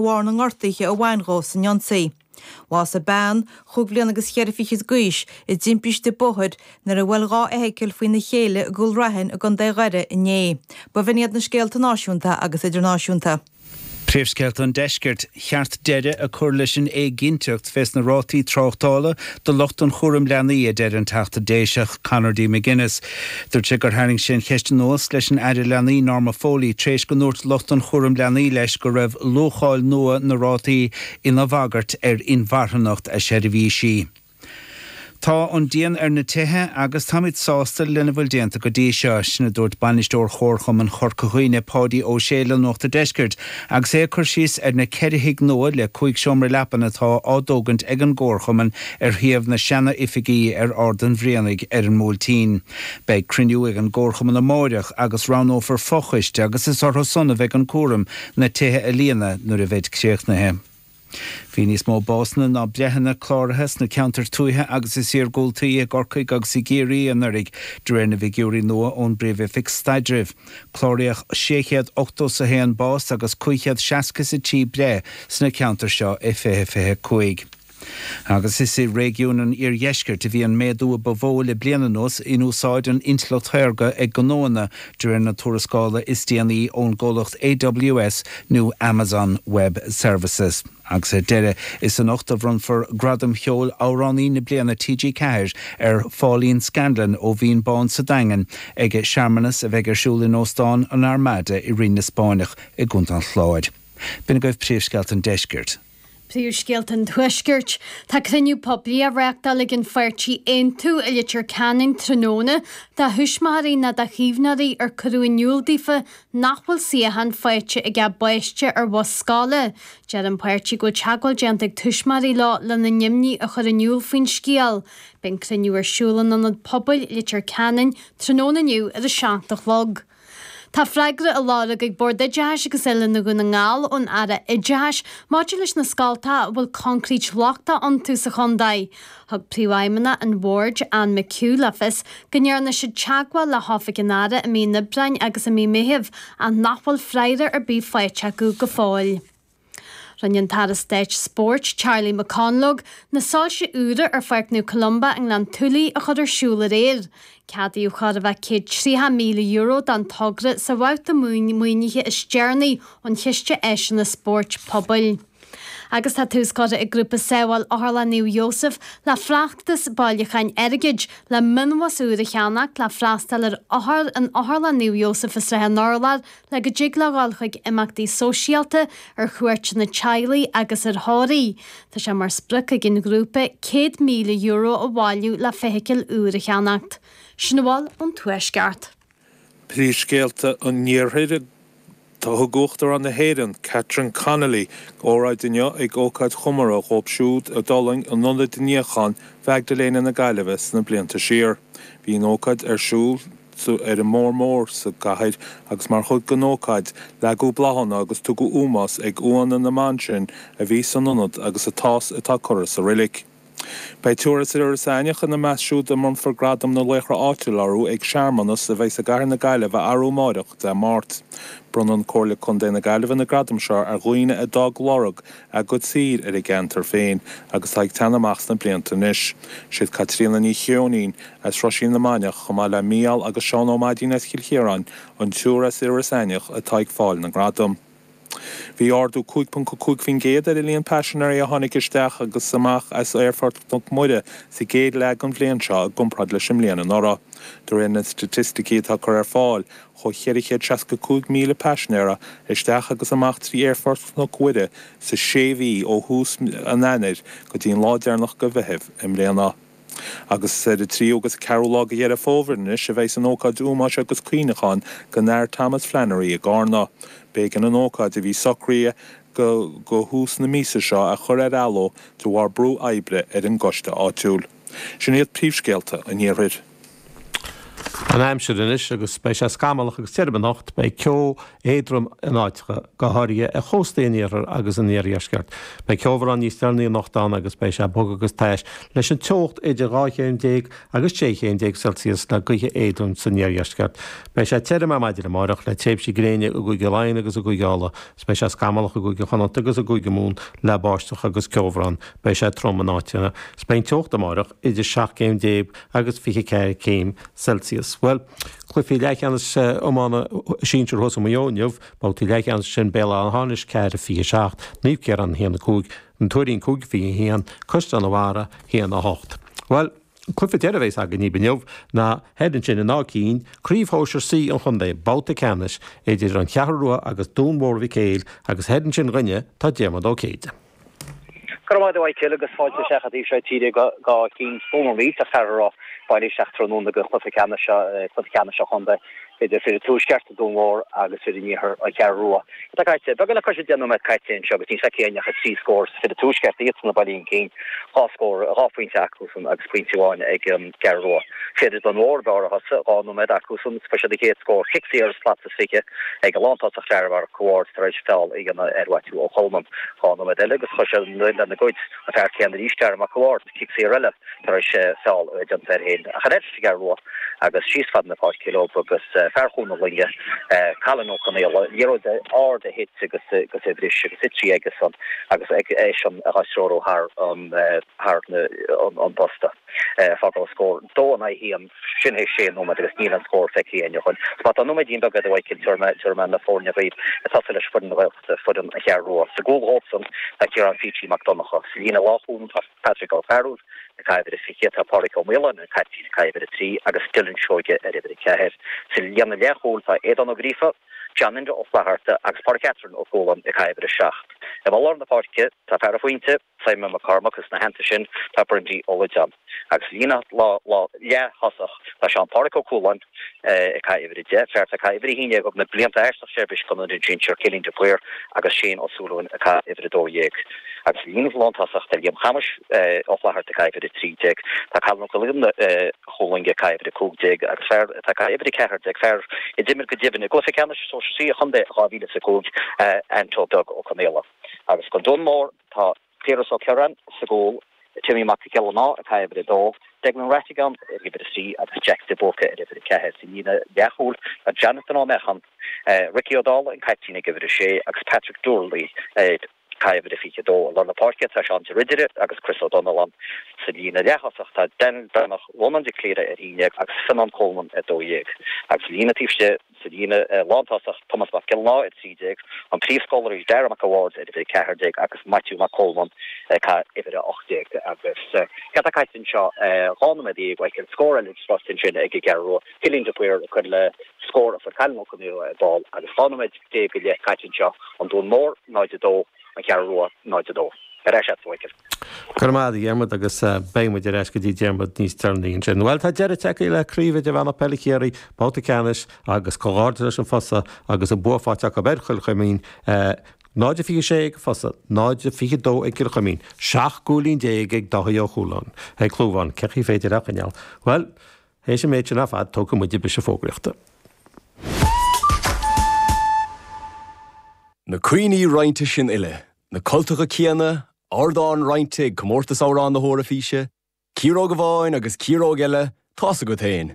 bharr na ngortuithe a bhain dhó san ionsaí. Bhásaigh bean, chúig bhliain agus cheithre fichid d'aois, i dtimpiste bóthair, nuair a bhuail dhá fheithicil faoina chéile i gCúil Raithin i gContae Dhoire inné. B'in iad na scéalta náisiúnta agus idirnáisiúnta. Príomhscéalta an Deiscirt, Cheart deireadh a cur leis an éiginnteacht fés na rátaí tráchtála do lucht an chúraim leanaí, a deir an Teachta Déiseach Conor D McGuinness Dúirt sé gur tharraing sé an cheist anuas leis an Aire Leanaí Norma Foley tar éis go ndúirt lucht an chúraim leanaí leis go raibh luacháil nua na rátaí ina bhagairt ar inmharthanacht a seirbhísí. Tá an díon ar na tithe agus táimid sásta lena bhfuil déanta go dtí seo. Sin a dúirt Bainisteoir Chomharchumann Chorca Dhuibhne, Páidí Ó Sé le Nuacht an Deiscirt. Agus é ag cur síos ar na ceithre thigh nua le cúig seomra leapan atá á dtógaint ag an gComharchumann ar shuíomh na seana-oifigí ar Ard an Bhrianaigh ar an mBuailtín. Beidh cruinniú ag an gComharchumann amáireach agus roghnófar fo-choiste agus is orthusan a bheidh an cúram na tithe a líonadh nuair a bheid críochnaithe. Bhí níos mó básanna ná breitheanna cláraithe sna ceantair tuaithe agus is iargúltaí i gCorcaigh agus i gCiarraí anuiridh, de réir na bhfigiúirí nua ón bPríomh-Oifig Staidrimh. Cláraíodh 681 bás agus 563 breith sna ceantair seo i 2025. Agus is i réigiún an iardheiscirt a bhí an méadú a ba mhó le bliain anuas in úsáid an intleacht shaorga ag gnóanna De réir na tuarascála is déanaí ón gcomhlacht AWS nó Amazon Web Services. Agus ar deireadh, is anocht a bhronnfar Gradam Cheoil Amhránaí na Bliana TG4 ar Phauline Scanlon ó Bhinn Bán sa Daingean ag searmanas a bheidh ar siúl in Óstán an Armada i Rinn na Spáinneach i gContae an Chláir. B'in agaibh príomhscéalta an deiscirt. Príomhscéalta an Tuaiscirt. Tá cruinniú poiblí á reáchtáil ag an pháirtí Aontú i Leitir Ceanainn tráthnóna do thuismitheoirí nó do chaomhnóirí ar cuireadh in iúl daofa nach bhfuil suíochán faighte ag a bpáiste ar bhus scoile. Deir an páirtí go bhfuil teagmháil déanta ag tuismitheoirí leo lena n-imní a chur in iúl faoin scéal. Beidh an cruinniú ar siúl in Ionad Pobail Leitir Ceanainn tráthnóna inniu ar a seacht a chlog. Tá freagra á lorg ag Bord Oideachais agus Oiliúna Dhún na nGall ón Aire Oideachais maidir leis na scoltacha a bhfuil concrete lochtach iontu sa chontae. Thug Príomhfheidhmeannach an Bhoird, Anne McHugh le fios go ndearna siad teagmháil le hOifig an Aire i mí an Aibreáin agus i mí Meithimh ach nach bhfuil freagra ar bith faighte acu go fóill. Rinne an tAire Stáit Spóirt, Charlie McConalogue, na soilse úra ar Pháirc Naomh Columba i nGleann tSúilí a chur ar siúl aréir. Ceadaíodh chóir a bheith €130,000 don togra sa bhabhta maoinithe is deireanaí ón Chiste Áiseanna Spóirt Pobail. Agus tá tús curtha ag Grúpa Sábháil Otharlann Naomh Iósaef le feachtas bailiúcháin airgid le mionbhus úr a cheannacht le freastal ar othair in Otharlann Naomh Iósaef i Srath an Urláir, le go dtig leo a ghabháil chuig imeachtaí sóisialta, ar chuairteanna teaghlaigh agus ar thórraimh. Tá sé mar sprioc ag an ghrúpa €100,000 a bhailiú le feithicil úr a cheannacht. Sin a bhfuil ón Tuaisceart. Príomhscéalta an Iarthair Thug Uachtarán na hÉireann, Catherine Connolly, óráid inniu ag ócáid chomóraidh dhóibh siúd a d'fhulaing in Ionad Níocháin Mhaigdiléana na Gaillimhe sna blianta siar. Bhí an ócáid ar siúl. sa, ar an mBóthar Mór sa gcathair agus mar chuid den ócáid, leagadh bláthanna agus tugadh ómós ag uaigheanna na mban sin a bhí san ionad agus atá, atá curtha sa reilig. Beidh triúr as Iorras Aithneach ina measc siúd a mbronnfar Gradam na Laochra Áitiúil orthu ag searmanas a bheidh sa gcathair na Gaillimhe arú amáireach, Dé Máirt. Bronnann Comhairle Contae na Gaillimhe na gradaim seo ar dhaoine a d'fhág lorg a gcuid saothair ar a gceantar féin agus atá ag teannadh amach sna blianta anois. Siad Caitríona Ní Cheoinín as Roisín na Mainiach chomh maith le Mícheál agus Seán Ó Maidín as Cill Chiaráin, an triúr as Iorras Aithneach atá ag fáil na ngradam. Bhí ardú 5.5% ar an líon paisinéirí a tháinig isteach agus amach as Aerfort Chnoc Mhuire sa gcéad leath den bhliain seo i gcomparáid leis an mbliain anuraidh, de réir na staitisticí atá curtha ar fáil. chuaigh 465,000 paisinéara isteach agus amach trí Aerfort Chnoc Mhuire sa sé mhí ó thús mí an Eanáir go dtí an lá deireanach de Mheitheamh i mbliana. Agus is ar an tríú agus an ceathrú lá de Dheireadh Fómhair anois a bheidhs an ócáid ómóis agus cuimhneacháin don Athair Thomas Flannery i gCárna. B'éigean an ócáid a bhí socraithe do thús na míosa seo a chur ar athló de bharr brú oibre ar an gcoiste áitiúil. Sin iad príomhscéalta an iarthair. An aimsir anois agus beidh sé scamallach agus tirim anocht. Beidh ceo éadrom in áiteacha, go háirithe ar chóstaí an iarthair agus an iardheisceart. Beidh ceobhrán níos deireanaí anocht ann agus beidh sé bog agus tais leis an teocht idir dhá chéim déag agus sé chéim déag Celsius le gaoithe éadrom san iardheisceart. Beidh sé tirim ar maidin amáireach le tréimhsí gréine i gCúige Laighean agus i gCúige Uladh. Beidh sé scamallach i gCúige Chonnacht agus i gCúige Mumhan le báisteach agus ceobhrán. Beidh sé trom in áiteanna. Beidh an teocht amáireach idir seacht gcéim déag agus 24 céim Celsius. Bhuel, cluichí leathcheannais iomána sinsir thuas i Maigh Eo inniu, babhtaí leathcheannais sin Béal Átha hAmhnais 4 27 Naomh Ciarán 1 5 An Tuairín 5 21 Caisleán an Bharraigh 1 8 Bhuel, an cluiche deireadh a bheas againn dhaoibh inniu ná thoir ansin in Áth Cinn, Craobh Shóisir C an Chontae, babhta ceannais idir an Cheathrú Rua agus Dún Mhór Mhic Éil agus thoir ansin dhúinne tá Diarmaid Ó Céide. Go raibh maith agat, a Mhichíl, agus fáilte isteach i dtaobh seo tíre go hÁth Cinn, slua maith. Iontach fear a raibh bailithe isteach tráthnóna go cluiche ceannais cluiche ceannais an chontae idir fir an Tuaisceart, Dún Mhór, agus fir an Iarthair, An Cheathrú Rua. Tá caite. Beagán le cois deich nóiméad caite anseo agus níl feicthe againn ach trí scór fir an Tuaisceart, iadsan ag bailiú chun cinn. Dhá scór, dhá phointe acusan agus pointe amháin ag an gCeathrú Rua. Fir Dún Mhór, b'fhearr a thosaigh, dhá nóiméad acusan, fuair siad a chéad scór, cic saor as slat, 20, ag an lántosach Darragh Mac a' Bhaird tar éis feall a dhéanamh ar Mhaitiú Ó Colmán dhá nóiméad eile agus chuir sé an mhoill lena gcuid, an fear céanna arís, Darragh Mac a' Bhaird, cic saor eile tar éis feall a dhéanamh air féin ach ar aghaidh leis an gCeathrú Rua agus síos fad na páirce leo agus fear Chuan na Loinge, Cailin Ó Conaola, liathróid ard a thit agus a bhris agus thit sí aige san agus eisean á treorú thar an bposta. Fágáil scór. 2-1. Sin é sé nóiméad agus níl aon scór feicthe againn ó shin. Má tá nóiméidín beag eile a Mhíchíl, tabharfaidh mé na foirne dhaoibh ag tosaí le foireann na Gaeltachta, foireann an Cheathrú Rua. Sa gcúl dhóibhsean tá Ciarán Pheaitsí Mac Donnacha. Sa líne lánchúil tá Patrick Ó Fearúil ag caitheamh uimhir a 20, tá Pádraig Ó Maoláin an caiptín ag caitheamh uimhir a 3 agus Dylan Seoige ar uimhir a 4. Sa líne leathchúil tá Aodán Ó Gríofa, John Enda Ó Flatharta agus Pádraig Catherine Ó Cualáin ag caitheamh uimhir a 7. I lár na páirce tá fear an phointe, Simon Mac Cormaic is ina theannta sin tá Brindy Ó Loideáin. Sa líne leath-thosach tá Seán Páraic Ó Cualáin ag caitheamh uimhir a deich, fear atá ag caitheamh uimhir a haon dhéag ó na blianta arsa an seirbhís do na sinsir, Cillian de Paor agus Shane Ó Súilleabháin ag caitheamh uimhir a dó dhéag. Agus sa líne lántosach tá Liam Shéamuis Ó Flaithearta ag caitheamh uimhir a trí déag. Tá Colin Ó Cuilín Ó Chualáin ag caitheamh uimhir a cúig déag agus fear atá ag caitheamh uimhir a ceathair déag, fear a d'imir go deimhin i gcluiche ceannais sóisir C an chontae i 2005, Anto Beag Ó Conaola. Agus don Dún Mór tá Piaras Ó Cioráin sa gcúl, Timmy Mac Giollarnáth ag caitheamh uimhir a dó, Declan Rattigan ar uimhir a trí agus Jack de Búrca ar uimhir a ceathair. Sa líne leathchúil tá Jonathan Ó Meacháin, Ricky Ó Dálaigh an caiptín ag uimhir a sé agus Patrick Doorley ag caitheamh uimhir a fiche a dó. I lár na páirce tá Seán de Ridire agus Chris Ó Donnalláin. Sa líne leath-thosach tá Daniel Breathnach Rónán de Cléire ar haon dhéag agus Fionnán Coleman ar dó dhéag. Agus sa líne taobh istigh. Sa líne lántosach Tomás Mac Giolláin, 13, an príomhscólarí Darragh Mac a' Bhaird ar uimhir 14 agus Maitiú Mac Cólmán ag caitheamh uimhir 18. Agus céard atá caite anseo dhá nóiméad déag a Mhíchíl scór eile ag sroicht ansin ag an gCeathrú Rua, Cillian de Paor ag cur le scór a fuair Cailin Ó Conaola ar ball agus dhá nóiméad déag go leith caite anseo, an Dún Mór 0-2, An Cheathrú Rua 0-2. Ar ais agat a Mhíchíl. Go raibh maith agat a Dhiarmuid agus beidh muid ar ais go dtí Diarmuid níos deireanaí ansin. Bhuel tá deireadh tagtha le Craobh Idirmheánach Peile Chiarraí, babhta ceannais agus comhghairdeas leis an Fosadh agus an bua faighte acu ar Chill Chuimín, 0-26 ag an Fosadh, 0-22 ag Cill Chuimín, 17 gcúilín ag Dáithí Ó Chualáin. Ó Clúmháin, cén chaoi ar féidir é a choinneáil? Bhuel, théis an méid sin ar fad, tógfaidh muid briseadh fógraíochta. Na cuimhní roinnte sin uile Na cultacha céanna, ardán roinnte ag Comórtas Amhrán na hEoraifíse, ciaróg amháin agus ciaróg eile, tá's agat féin.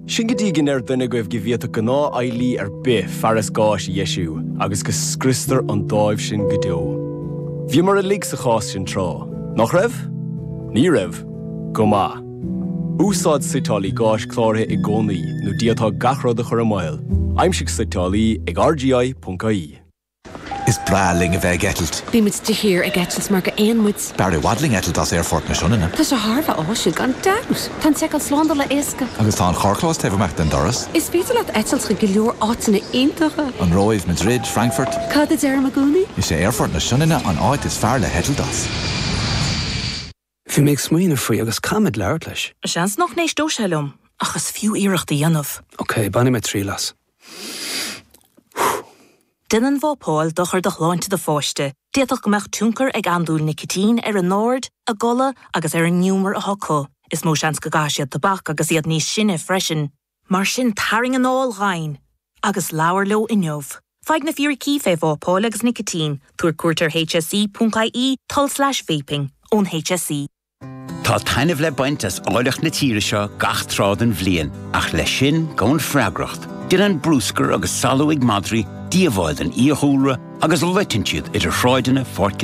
Sin go dtí go ndeir duine agaibh go bhféadfadh gnáthfheighlí ar bith fearas gáis a dheisiú agus go scriostar an dáimh sin go deo. Bhíomar uilig sa chás sin tráth, nach raibh? Ní raibh? Go maith. Úsáid suiteálaí gáis cláraithe i gcónaí nó d'fhéadfá gach rud a chur i mbaol. Aimsigh suiteálaí ag rgi.ie. Is breá linn a bheith ag eitilt. Bímid de shíor ag eitilt mar gur éin muid. B'fhearr i bhfad linn eitilt as Aerfort na Sionainne. Tá sé thar a bheith áisiúil gan dabht. Tá an tseiceáil slándála éasca. Agus tá an carrchlós taobh amuigh den doras. Is féidir leat eitilt chuig go leor áiteanna iontacha. An Róimh, Madrid, Frankfurt. Cad a deirim i gcónaí? Is é Aerfort na Sionainne an áit is fearr le heitilt as. Bhí mé ag smaoineamh faoi agus caithfidh mé labhairt leis. Seans nach n-éisteodh sé liom ach is fiú iarracht a dhéanamh. Ok, bainfidh mé triail as. Déanann vapáil dochar do shláinte do pháiste. D'fhéadfadh go mbeadh tionchar ag andúil nicitín ar a n-aird, a gcodladh agus ar an ngiúmar atá acu. Is mó seans go gcaithfidh siad tobac agus iad níos sine freisin. Mar sin tarraing anáil dhomhain agus labhair leo inniu. Faigh na fíricí fé vapáil agus nicitín, tabhair cuairt ar HSE.ie, tulslais vaping, ón HSE. Tá taitneamh le baint as áilleacht na tíre seo gach tráth den bhliain, ach leis sin gabhann freagracht. Déanann bruscar agus salú ag madraí díobháil don fhiadhúlra agus loiteann siad idir shráideanna, pháirc